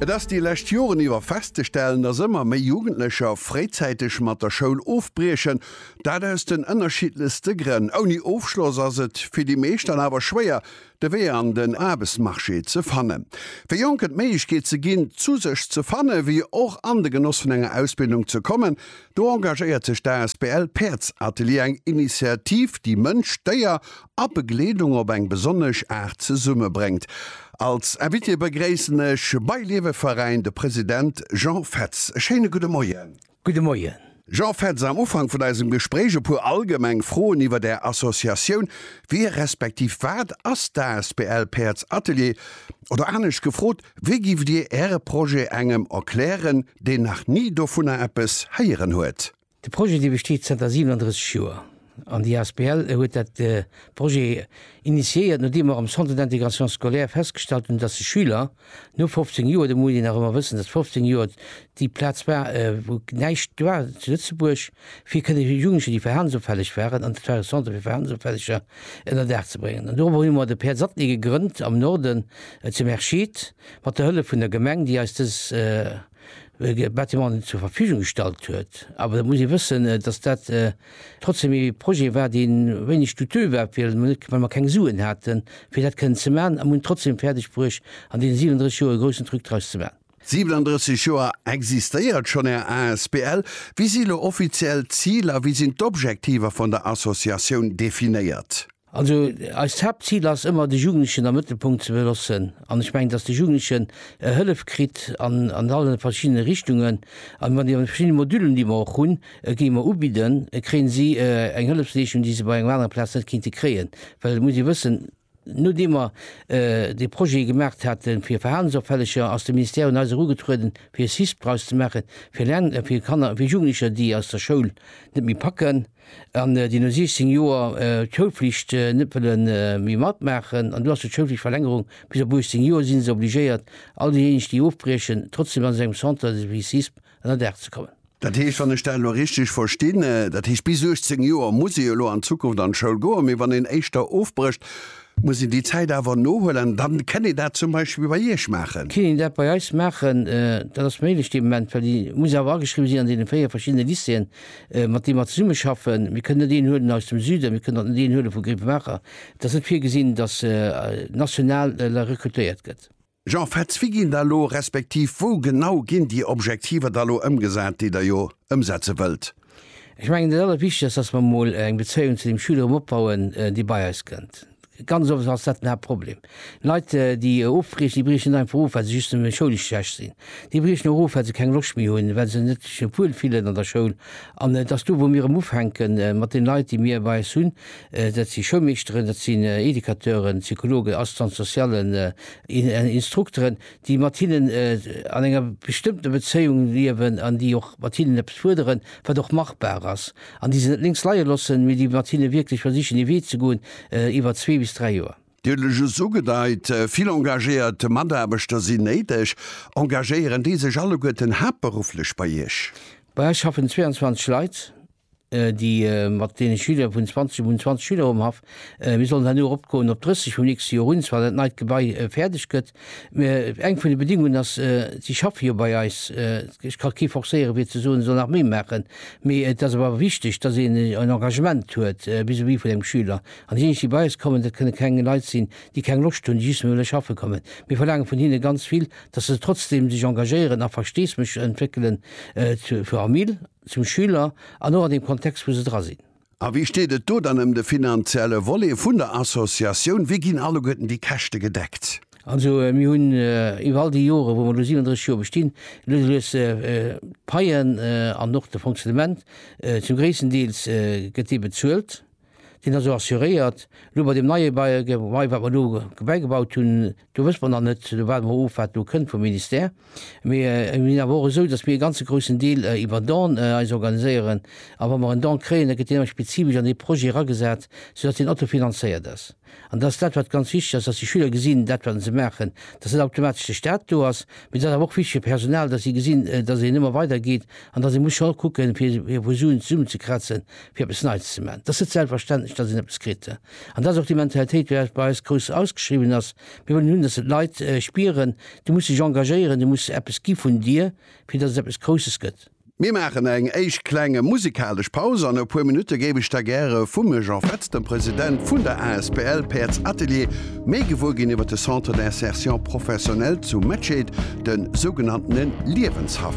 Et ass déi lescht Joren iwwer festzestellen, dass ëmmer méi Jugendlecher fréizäiteg mat der Schoul ofbriechen. Dat aus den ënnerschiddlechste Grënn. Ouni Ofschloss ass et fir déi meescht dann awer schwéier, de Wee an den Aarbechtsmarché ze fannen. Fir Jonken d'Méiglechkeet ze ginn, zu sech ze fannen, wéi och an de Genoss vun enger Ausbildung ze kommen, do engagéiert sech d'asbl Päerdsatelier, eng Initiativ, déi Mënsch, Déier a Begleedung op eng besonnesch Aart zesumme bréngt. Als Invité begréissen ech bei Leweveräin de President Jean Fetz. E schéine gudde Moien. Gudde Moien. Jean Fetz, am Ufank vun eisem Gespréich e puer allgemeng Froen iwwert Är Associatioun, Wie respektiv wat ass d'asbl Päerds Atelier? Oder anescht gefrot, Wéi giff Dir Äre Projet engem erklären, deen nach ni dovunner eppes héieren huet? De Projet dee besteet zënter 37 Joer an déi asbl huet dat Projet initiéiert, nodeem mer am Centre d'intégration scolaire festgestallt hunn, datt de Schüler no 15 Joer, do muss een nach ëmmer wëssen, datt 15 Joer déi Plaz war wou näischt war zu Lëtzebuerg, fir kënne Jugendlecher déi verhalensofälleg waren, an dat war e Centre fir Verhalensofälleger, ënner Dag ze bréngen. An dorobber hu mer de Pär Zattny gegrënnt am Norden zu Merschid mat der Hëllef vun der Gemeng déi eis dës. Bâtiments zur Verfügung gestallt huet. Awer da muss ee wëssen, datt dat trotzdeem ee Projet war, dee wéineg douteux war, well mer net, well mer keng Suen haten, fir dat kënnen ze maachen. A mir hunn et trotzdeem fäerdeg bruecht, an deene 37 Joer e groussen Truc draus ze maachen. 37 Joer existéiert schonn Är asbl. Wéi si elo offiziell d'Ziler? Wéi sinn d'Objektiver vun der Associatioun definéiert? Also eist Haaptzil ass ëmmer, de Jugendlechen am Mëttelpunkt ze belossen. An ech mengen, datt de Jugendlechen e Hëllef kritt an an alle verschiddene Richtungen. An wann déi an de verschiddene Modülen, déi mer och hunn, géi mer ubidden, kréie si eng Hëllefsleeschung, déi se bei enger anerer Plaz net kéinte kréien. Well et muss ee wëssen, nodeem mer dee Projet gemaach hate fir Verhalensopfälleger, ass de Ministère un eis erugetrueden, fir e CISP draus ze maachen, fir Lern-, fir Kanner, fir Jugendlecher, déi aus der Schoul net méi packen, an déi no 16 Joer d'Schoulflicht net wëlle méi matmaachen, an do ass jo d'Schoulflichtverlängerung bis op 18 Joer, si se obligéiert, all déijéineg, déi ofbriechen, trotzdeem an esou engem Centre de Suicisme ënnerdaach ze kommen. Dat heescht, wann ech dat elo richteg verstinn, dat heescht, bis 18 Joer muss ee jo elo an Zukunft an d'Schoul goen, mee wann een éischter ofbrécht, muss een déi Zäit awer nohuelen, dann kënn een dat zum Beispill bei Iech maachen? Kënn een dat bei eis maachen, dat ass méiglech dee Moment, well déi muss awer ageschriwwen sinn an deene véier verschiddene Lycéeën, mat deem mer zesummeschaffen. Mir kënnen net een huelen aus dem Süden, mir kënnen och net een huele vu Grevenmacher. Et ass net virgesinn, datt national elo rekrutéiert gëtt. Jean Fetz, Wéi ginn da elo, respektiv wou genau ginn déi Objektiver da elo ëmgesat, déi Der jo ëmsetze wëllt? Ech mengen, dat Allerwichtegst ass, datt mer emol eng Bezéiung zu deem Schüler erëm opbauen, dee bei eis kënnt. Ganz oft ass dat den Haaptproblem. Leit, déi ofbriechen, déi briechen einfach of, well se just nëmme schoulesch schlecht sinn. Déi briechen och of, well se keng Loscht méi hunn, well se net sech net wuel fillen an der Schoul. An et ass do, wou mir erëm ufänke mat den Leit, déi mir bei eis hunn. Dat si Schoulmeeschteren, dat sinn Educateuren, Psychologen, Assistants-socialen, Instrukteren, déi mat hinnen an enger bestëmmter Bezéiung liewen an déi och mat hinnen eppes fuerderen, wat och machbar ass. An déi se net lénks leie loossen, mee déi mat hinne wierklech versichen ee Wee ze goen iwwer zwee bis dräi Joer. Dir hutt lech just ugedeit, vill engagéiert Mataarbechter sinn néideg. Engagéieren déi sech alleguerten haaptberufflech bei Iech? Bei eis schaffen 22 Leit, déi mat deene Schüler vun 20, mir hunn 20 Schüler um Haff, mir sollen herno eropgoen op 30 vum nächste Joer un, zwar dat neit Gebai fäerdeg gëtt. Eng vun de Bedingungen ass, si schaffe jo bei eis, ech ka kee forcéieren, fir ze soen, e soll nach méi maachen, mee et ass awer wichteg, dass een en Engagement huet vis-à-vis vun engem Schüler. An déijéineg, déi bei eis kommen, dat kënne keng Leit sinn, déi keng Loscht hunn, déi just wëlle schaffe kommen. Mir verlaange vun hinne ganz vill, dass se trotzdeem sech engagéieren a Versteesdemech entwéckelen zur Famill, zum Schüler an och an deem Kontext, wou se dra sinn. A wéi steet et do dann ëm de finanzielle Volet vun der Associatioun? Wéi ginn alleguerten déi Käschte gedeckt? Also mir hunn iwwer all déi Joren, wou mer elo 37 Joer bestinn, lues a lues d'Paien an och de Fonctionnement, zum gréissten Deels gëtt dee bezuelt, deen ass och assuréiert. Elo bei deem neie Bail, wat mer elo bäigebaut hunn, Do wësse mer nach net, do waarde mer of, wat do kënnt vum Ministère. Mee et ass awer och esou, datt mir e ganze groussen Deel iwwer Don eis organiséieren. A wa mer en Don kréien, da gëtt deen awer spezifesch an dee Projet eragesat, soudatt deen autofinanzéiert ass. An dat ass dat, wat ganz wichteg ass, datt déi Schüler gesinn, dat wat se maachen, datt net automatesch de Staat do ass. Mee et ass awer och wichteg fir d'Personal, datt si gesinn, datt een ëmmer weider geet an datt ee muss scho kucken, fir vu Suen zesummenzekrazen, fir eppes Neits ze maachen. Et ass net selbstverständlech, datt een eppes kritt. An dat ass och déi Mentalitéit, déi bei eis grouss ausgeschriwwen ass. Mir wëllen hunn, datt d'Leit spieren, du muss dech engagéieren, du muss eppes gi vun dir, fir datt et eppes Grousses gëtt. Mir maachen eng éischt kleng musikalesch Paus. An e puer Minutte géif ech da gäre vum Jean Fetz, dem President vun der asbl Päerds Atelier, méi gewuer ginn iwwer de Centre d'insertion professionnelle zu Mettscheed, de sougenanntene Liewenshaff.